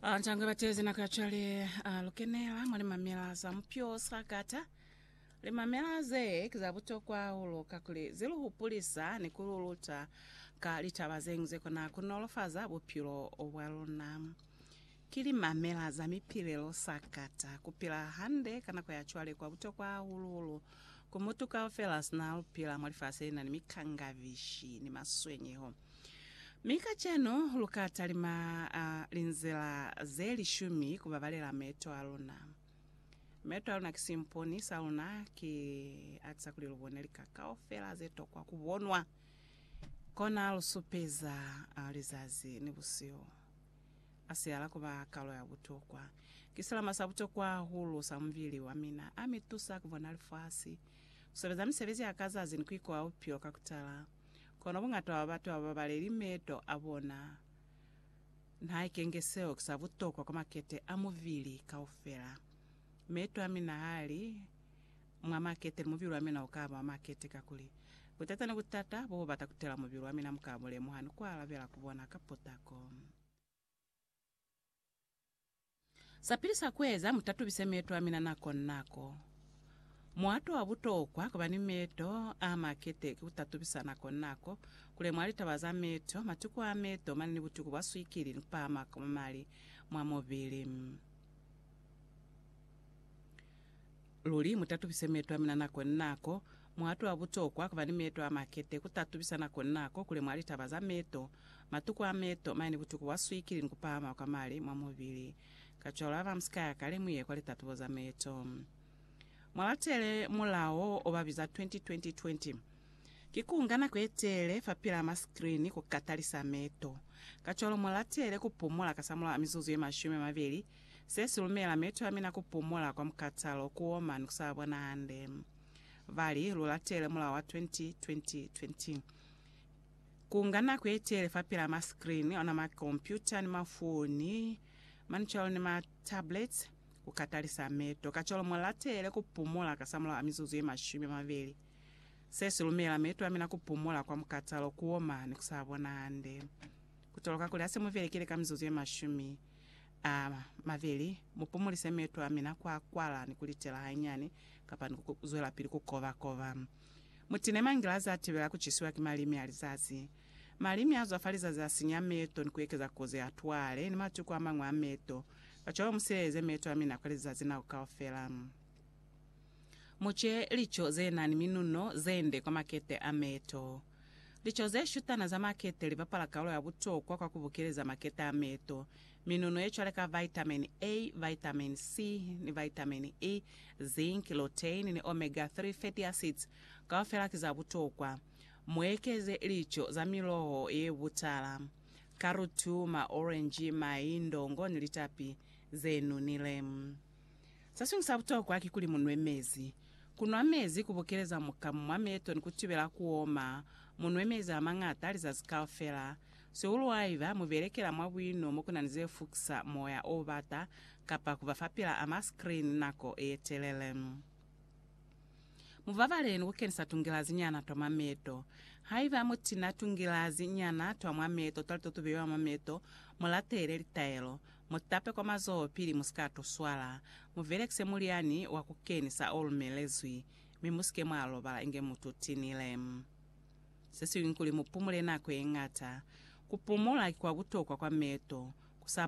Antanga batezi nako yacwale alukenela mwa limamela za mupyo sakata. Limamela ze ki za butokwa hahulu kakuli zi lu hupulisa ni ku lu luta ka litaba ze ñwi ze kona ku nolofaza bupilo bwa luna. Ki limamela za mipilelo sakata. Ku pila hande ka nako ya cwale kwa butokwa hahulu-hulu ku mutu kaufela sina lupila mwa lifasi lena ni mikangavishi ni maswenyeho. Mi kacenu lu ka talima linzila ze lishumi ku babalela meeto a luna. Meeto a luna ki simponi sa luna, ki atisa kuli lu bone lika kaufela ze tokwa ku bonwa. Kona lu supeza lizazi ni busihu. A sihala ku ba kalo ya butokwa. Ki silama sa butokwa hahulu sa mubili wa mina. A mi tusa ku bona lifasi, ku sebeza misebezi ya ka zazi ni ku ikoha bupilo ka ku tala. Kono bungatwa bwa batu ababaleli meeto abona nahaike nge seo kisa butokwa kwa makete a mubili kaufela. Meeto amina hali mwa makete ni mubili wamina ukaba wa makete kakuli, butata ni butata bobubata kutela mubili wamina mukaba bulemuha ni kualabela kubona ka potako. Sapili sa kueza, Mutatubise meto amina nako ni nako. Muato wa butokwa kuba ni meto a makete ki kutatubisa nako ni nako, kulemuha litaba za meto, matuku a meto mane ni butuku bwa swikili ni kupahama kwa mali mwa mubili. Luli, mu tatubise meeto a mina nako ni nako. Mu atwa butokwa ku ba ni meeto a makete, ku tatubisa nako ni nako kuli mwa litaba za meeto, matuku a meeto, mane butuku bwa swikili ni ku pahama kwa mali mwa mubili. Kacwalo haba mu si ka ya kale mu ye kwa litatubo za meeto. Mwa latele mulao o ba biza 20-20-20. Ki ku nga nako ye telele fa pila ma skrini ku ka talisa meeto. Kacwalo mu latele ku pumula kasamulaho a mizuzu ye mashumi a mabeli Se si lumela meto a mina ku pumola kwa mukatalo, ku oma, ni ku sa bona hande. Ba li, Lu latele mulao wa 20-20-20. Ku nga nako ye tele fapil'a ma screen, ona ma kompyuta ni mafoni, mane cwalo ni ma tablets, ku ka talisa meto. Kacwalo mu latele ku pumola kasamulaho a mizuzu ye mashumi a mabeli. Se si lumela meto a mina ku pumola kwa mukatalo, ku oma, ni ku sa bona hande. Ku toloka kuli ha se mu velekile ka mizuzu ye mashumi, a mabeli, mu pumulise meto a mina kwa kwala ni ku litela hanyani kapa ni ku zwelapili ku koba-koba. Mu tine mangilazi a tibela ku cisiwa ki malimi a lizazi. Malimi a zwa fa lizazi a sinya meto ni ku ekeza kozi ya twale ni matuku a mañwi a meto. Kacwalo mu sileleze meto a mina kwa lizazi nako kaufela. Mu ce lico ze na ni minuno ze nde kwa makete a meto. Lico ze shutana za makete li bapala kaolo ya butokwa kwa ku bukeleza makete a meeto. Minuno ye cwale ka vitameni A, vitameni C, ni vitameni E, zinc, lutein, ni omega 3 fatty acids kaufela ki za butokwa. Mu ekeze lico za miloho ye butala, karutu, maorenji, mai, ndongo ni litapi ze nunile. Se siñwi sa butokwa kikuli mu nwe mezi. Ku nwa mezi ku bukeleza mukamu mwa meto ni ku tibela ku oma. Mu nwe mezi a mañata lizazi kaufela, sihuluhaiba mu belekela mwa buino mo ku na ni ze fukisa moya o bata kapa ku ba fa pila a maskrini nako ye telele. Mu babale ni ku kenisa tungilazi nyana twa mwa meto. Haiba mu tina tungilazi nyana twa mwa meto twa lito tu beiwa mwa meto, mu latele litaelo. Mu tape kwa mazoho pili mu si ka to swala. Mu velekise mulyani wa ku kenisa o lumelezwi, mi mu si ke mwa lobala inge mu tutinile. Se siñwi kuli mu pumule nako ye ñata. Ku pumula ki kwa butokwa kwa meto, ku sa